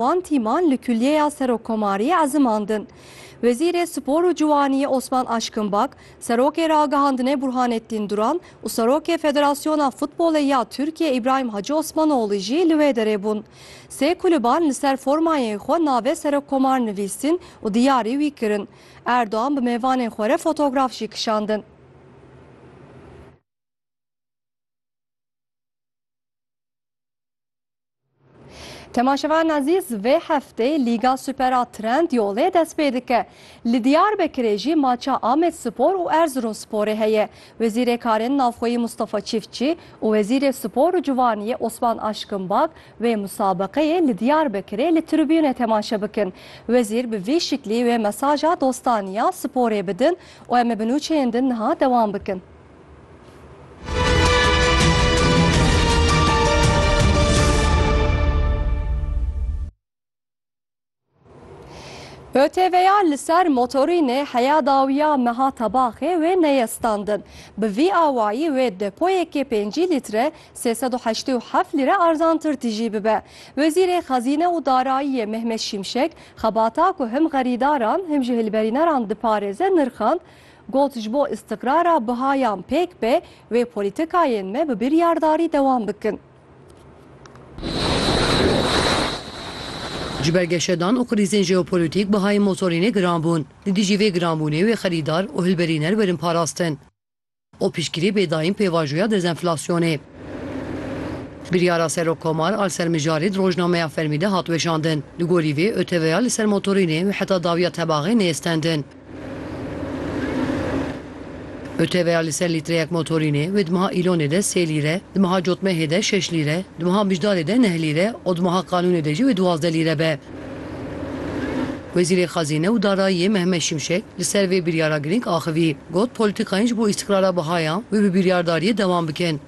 Wan tîman li Kulîyeya Serokkomariyê ezimandin. Wezîrê Spor û Ciwaniyê Osman Aşkinbak, Serokê Ragihandinê Burhanettin Duran û Serokê Federasyona Futbolê ya Tirkiyê Îbrahim Hacı Osmanoğlu jî li wê derê bûn. Sê kulîban li ser formayên xwe navê Serokkomar nivîstin û diyarî wî kirin. Erdogan bi mêvanên xwe re fotograf jî kişandin. Temaşevan Ezîz vê heftê Lîga Super a Trend Yolê dest pê dike. Li Diyarbekirê jî maça Amed Spor û Erzurumsporê heye. Wezîrê Karên Navxweyî Mustafa Çiftçî û Wezîrê Spor û Ciwaniyê Osman Aşkinbak wê musabeqeyê li Diyarbekirê li tribûnê temaşe bikin. Wezîr bi vî şiklî wê mesaja dostaniya sporê bidin û em ê bi nûçeyên din niha dewam bikin. ÖTV'ya li ser motorînê heya dawiya meha tebaxê wê neye standin. Bi vî awayî wê depoyekê pêncî lître sê sed û heştê û heft lîre arzantir tijî bibe. Wezîrê Xezîne û Darayiyê Mehmet Şimşek xebata ku him xerîdaran him jî hilberîneran diparêze nirxand, Got, Ji bo îstiqrara buha yan pêk be, wê polîtikayên me bi biryardarî dewam bikin. Ji ber geşedan û krîzên jeopolîtîk buhayên motorînê giran bûn. Li dijî vê giranbûnê wê xerîdar û hilberîner werin parastin. û piştgirî bê dayîn pêvajoya dezenflasyonê. Biryara Serokkomar a li ser mijarê di rojnameya fermî de hat weşandin. Li gorî vê ÖTVya li ser motorînê û heta dawiya tebaxê neyê stendin. ÖTVya li ser lîtreyek motorînê wê di meha Îlonê de sê lîre, di meha Cotmehê de şeş lîre, di meha Bijdarê de neh lîre û di meha Qanûnê de jî wê duwazdeh lîre be. Wezîrê Xezîne û Darayiyê Mehmet Şimşek li ser vê biryara girîng axivî, got, Polîtîkayên ji bo îstîqrara biha ya wê bi biryardariyê dewam bikin.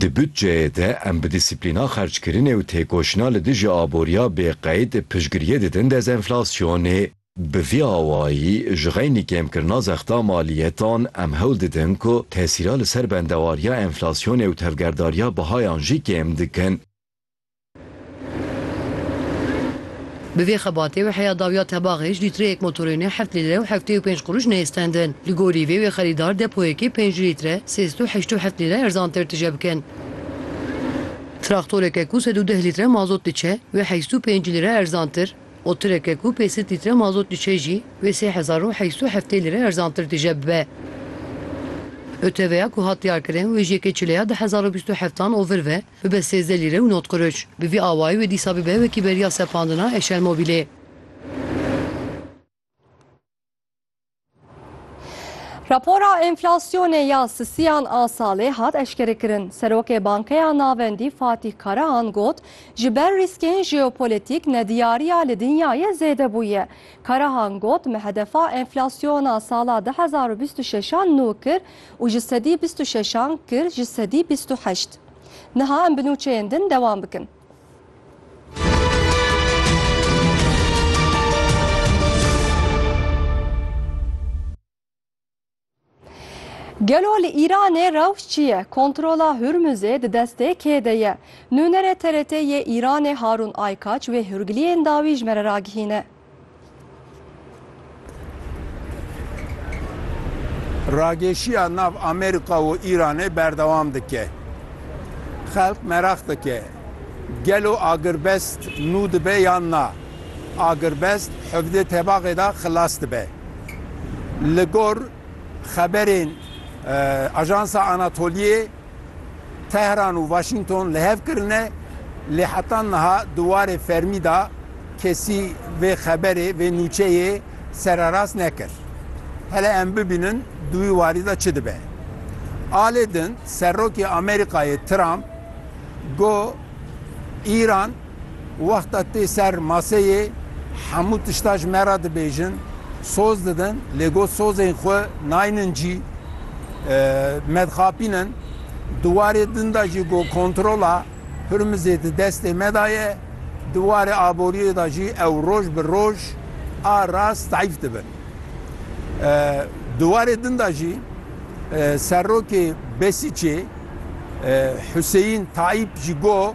Di budceyê de em bi dîsîplîna xerckirinê û têkoşîna li dijî aboriya bê qeyd piştgiriyê didin dezenflasyonê. Bi vî awayî ji xeynî kêmkirina zexta maliyetan em hewl didin ku tesîra li ser bendewariya enflasyonê û tevgerdariya bihayan jî kêm dikin. Bi vê xebatê wê heya dawiya tebaxê ji lîtreyek motorênê heft lîre û heftê û pênc quruş neyê stendin. Li gorî vê wê xerîdar depoyekê pênc lître sê sed û heşt û heft lîre erzantir tije bikin. Traktoreke ku sed û deh lître mazot diçe wê heşt û pênc lîre erzantir û tireke ku pênc sed lître mazot diçe jî wê sê hezar û heşt û heftê lîre erzantir tije bibe. ÖTV'ya ku hat diyarkirin wê ji yekê çileya du hezar û bîst û heftan ovir ve. Bibe sêzdeh lîre û nod qiriç. Bi vî awayî wê dîsa bibe wekî beriya sepandina Eşermobîlê. Rapora enflasyonê ya sisiyan a salê hat eşkerekirin. Serokê Bankeya Navendî Fatîh Karahan got, Ji ber rîskên jeopolîtîk nediyariya li dinyayê zêde bûye. Karahan got, Me hedefa enflasyona sala du hezar û bîst û şeş a nû kir, û ji sedî bîst û şeşan kir ji sedî bîst û heşt. Niha em bi nûçeyên din dewam bikin. Gelo li Îranê rewş çi ye? Kontrola Hurmuzê di destê kê de ye? Nûnerê TRT yê Îranê Harûn Aykaç wê hûrgiliyên dawî ji me re ragihîne. Rageşiya nav Amerîka û Îranê berdewam dike. Xelk meraq dike, gelo agirbest nû dibe yan na? Agirbest hevdê tebaxê de xilas dibe. Li gor xeberên Ajansa Anatoliyê, Tehran û Waşîngton li hev kirine, lê heta niha di warê fermî de kesî vê xeberê, vê nûçeyê sererast nekir. Hele em bibînin di wî warî de çi dibe. A lê din Serokê Amerîkayê Trump got, Îran Wexta tê ser maseyê hemû tişta ji me re dibêjin, soz didin lê got sozên xwe naynin cî, me dixapînin. Di warê din de jî got kontrola Hurmizê di destê me de ye. Di warê aboriyê de jî ew roj bi roj a rast zayîf dibin. Di warê din de jî serokê Besîcê Huseyîn Tayîp jî got,